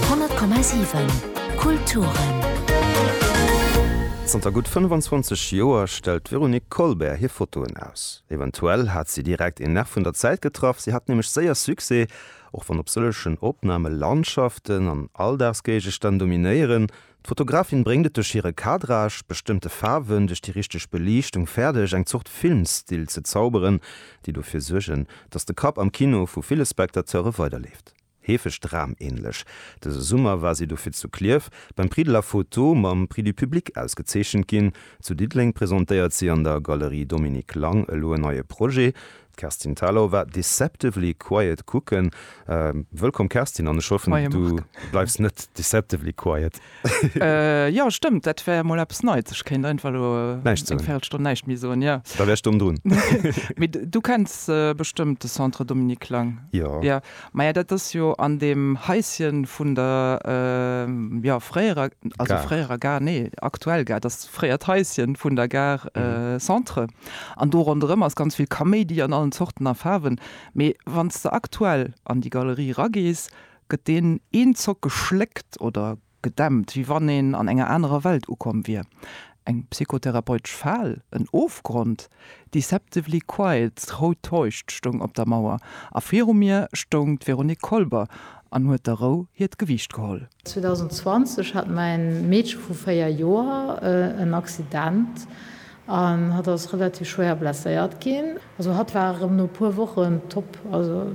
100,7 Kulturen. Zanter gutt 25 Joer stellt d'Véronique Colbert hir Fotoen aus. Eventuell hat si direkt een Nerv vun der Zäit getraff, si hat nämlech séier Succès, och wann op sëllegen Opname Landschaften an Alldagsgéigestänn dominéieren, D'Fotografin bréngt et duerch hire Cadrage, bestëmmte Faarwen, duerch déi richteg Beliichtung fäerdeg, eng Zort Filmstil ze zauberen, déi dofir suergen, datt de Kapp am Kino vu ville Spectateure weiderleeft. Heefeg dramähnlech. Dëse Summer war si dofir zu Klierf beim Prix de la Photo mam Prix du Public ausgezeechent ginn. Zu Diddeleng presentéiert si an der Galerie Dominique Lang elo en neie Projet, D'Kerstin Thalau war deceptively quiet kucken. Wëllkomm Kerstin, an ech hoffen du bleifs net deceptively quiet. Jo stëmmt, dat wär mol eppes Neits, ech kéint einfach elo eng Véirelstonn näischt méi soen. Jo da wär ech domm drun. Mee du kenns bestëmmt de Centre Dominique Lang? Jo. Maja dat ass jo an deem Haisschen vun der jo fréierer, also fréierer Gare, nee aktuell Gare, dass fréiert Haisschen vun der Gare Centre an do ronderëm ass ganz vill Kaméidi an allen Zorten a Faarwen. Mee wann s de aktuell an déi Galerie eragees gëtt deen een Zock geschléckt oder Gedämpt, wéi wann een an enger anerer Welt ukomm wier. Eng psychotherapeutesch Fal? En Ofgrond? Deceptively quiet, rou täuscht, stoung op der Mauer, a viru mir stoung d'Véronique Kolber an huet der Rou hiert Gewiicht geholl. 2020 hat mäin Meedche vu 4 Joer en Accident an hatt ass relativ schwéier blesséiert ginn. Also hatt war erëm no e puer Wochen top. Also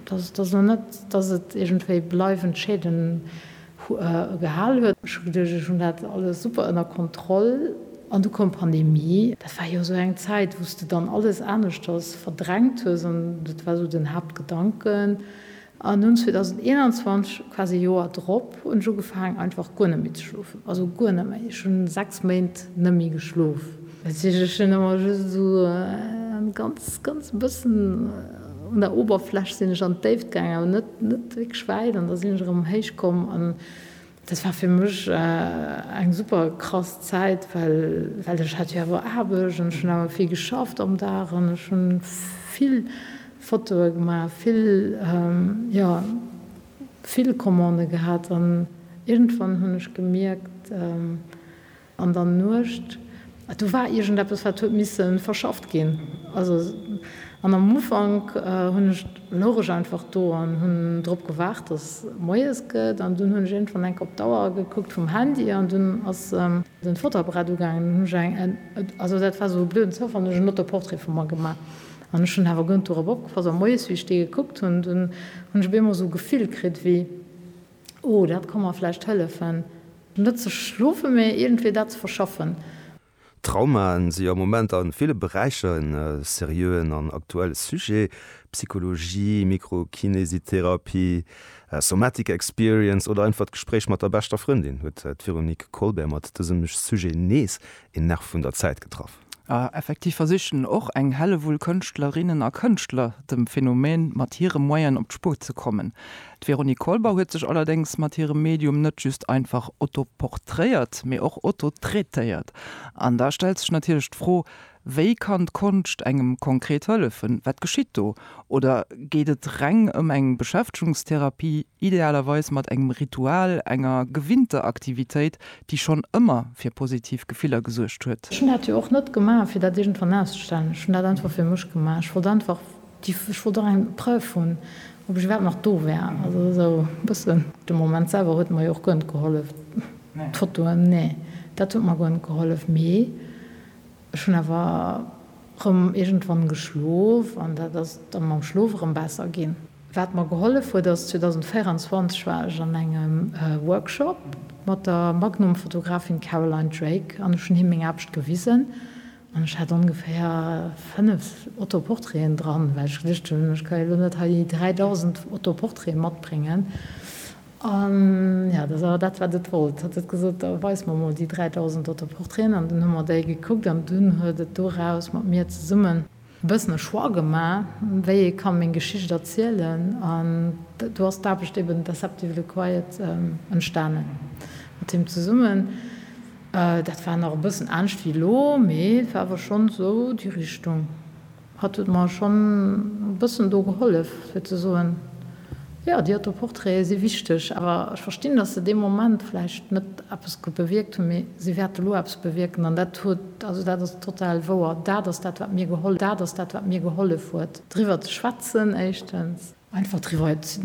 dat ass net, datt et iergendwéi bleiwend Schäden gehal huet. Ech hu geduecht, ech hunn dat alles super ënner Kontroll an du koum Pandemie. Dat war jo esou eng Zäit, wou s de dann alles aneschters verdrängt hues an dat war esou den Haaptgedanken. An dunn 2021, quasi e Joer drop, hunn ech ugefaangen einfach guer net méi ze schlofen, also guer net méi. Ech hunn 6 Méint net méi geschlof. Ech si lech jo nëmmer just esou en ganz, ganz bëssen un der Oberfläch sinn ech an d'Déift gaangen, awer net, net wierklech wäit. An da sinn ech erëm héich komm an dat war fir mech eng super krass Zäit, well, well ech hat jo awer Aarbecht an ech hunn awer vill geschafft am Dag an ech hunn vill Fotoe gemaach, vill, jo, vill Commande gehat an iergendwann hunn ech gemierkt, An der Nuecht, do war iergendeppes, wat huet misse verschafft ginn. Also, an am Ufank hunn ech, louch ech einfach do an hunn drop gewaart, dass moies gëtt. An dunn hunn ech iergendwann enk op d'Auer gekuckt vum Handy an dunn ass den Fotoapparat ugaangen. Dunn hunn ech eng, also dat war sou e blöden Zoufall, hunn ech en Autoportrait vu mer gemaach. An ech hunn awer guer net dorop opgepasst. A moies, wéi ech dee gekuckt hunn, dunn hunn ech op eemol sou e Gefill kritt, wéi Oh, dat ka mer vläicht hëllefen, net ze schlofen, mä iergendwéi dat ze verschaffen. Traumae si am Moment a ville Beräicher e seriöen an aktuelle Sujet. Psychologie, Mikrokinesitherapie, Somatic Experience oder einfach d'Gespréich mat der beschter Frëndin huet d'Véronique Kolber mat dësem Sujet nees een Nerv vun der Zäit getraff. A effektiv versichen och eng Hellewull Kënschtlerinnen a Kënschtler dem Phänomen mat hire Moyene op d'Spuer ze kommen. D'Véronique Kolber huet sech allerdéngs mat hirem Medium net just einfach autoporträiert, mee och autotraitéiert. An da stellt sech natierlech d'Fro, Wéi kann d'Konscht engem konkret hëllefen? Wat geschitt do? Oder geet et reng ëm eng Beschäftegungstherapie? Idealerweis mat engem Ritual, enger gewinnter Aktivitéit, déi schonn ëmmer fir positiv Gefiller gesuergt huet. Ech hunn dat jo och net gemaach, fir dat iergendwann auszestellen. Ech hunn dat einfach fir mech gemaach. Ech wollt einfach déi, ech wollt och eng Preuve hunn, ob ech iwwerhaapt nach do war. Also esou e bëssen. De Moment selwer huet mer jo och guer net gehollef. D'Fotoen, nee, dat huet mer guer net gehollef. Mee. Ech hunn awer rëm iergendwann geschlof an dat ass da mam Schlof erëm besser ginn. Wat mer gehollef huet ass, 2024 war ech an engem Workshop mat der Magnum-Fotografin Caroline Drake an ech hunn him meng Aarbecht gewisen an ech hat ongeféier 5 Autoportraiten dran, well ech geduecht hunn, ech ka jo elo net hei déi 3.000 Autoportraiten matbréngen. An jo, dat ass awer dat, wat et wollt. Et huet gesot, da weis mer emol déi 3.000 Autoportraiten. An dunn hu mer déi gekuckt an dunn huet et doraus mat mir zesummen e bëssen e Choix gemaach, wéi ee ka meng Geschicht erzielen. An do ass d'Aarbecht eben Deceptively the Quiet entstanen mat him zesummen. Dat war nach e bëssen anescht wéi elo, mee war awer schonn esou déi Richtung. Hat huet mer schonn e bëssen do gehollef, fir ze soen, jo, déi Autoportraite si wichteg, awer ech verstinn, datt se dee Moment vläicht net eppes bewierkt hunn, mee si wäerte lo eppes bewierken. An dat huet, also dat ass total wouer, dat ass dat, wat mir gehollef huet, driwwer ze schwätzen, éischtens. Einfach driwwer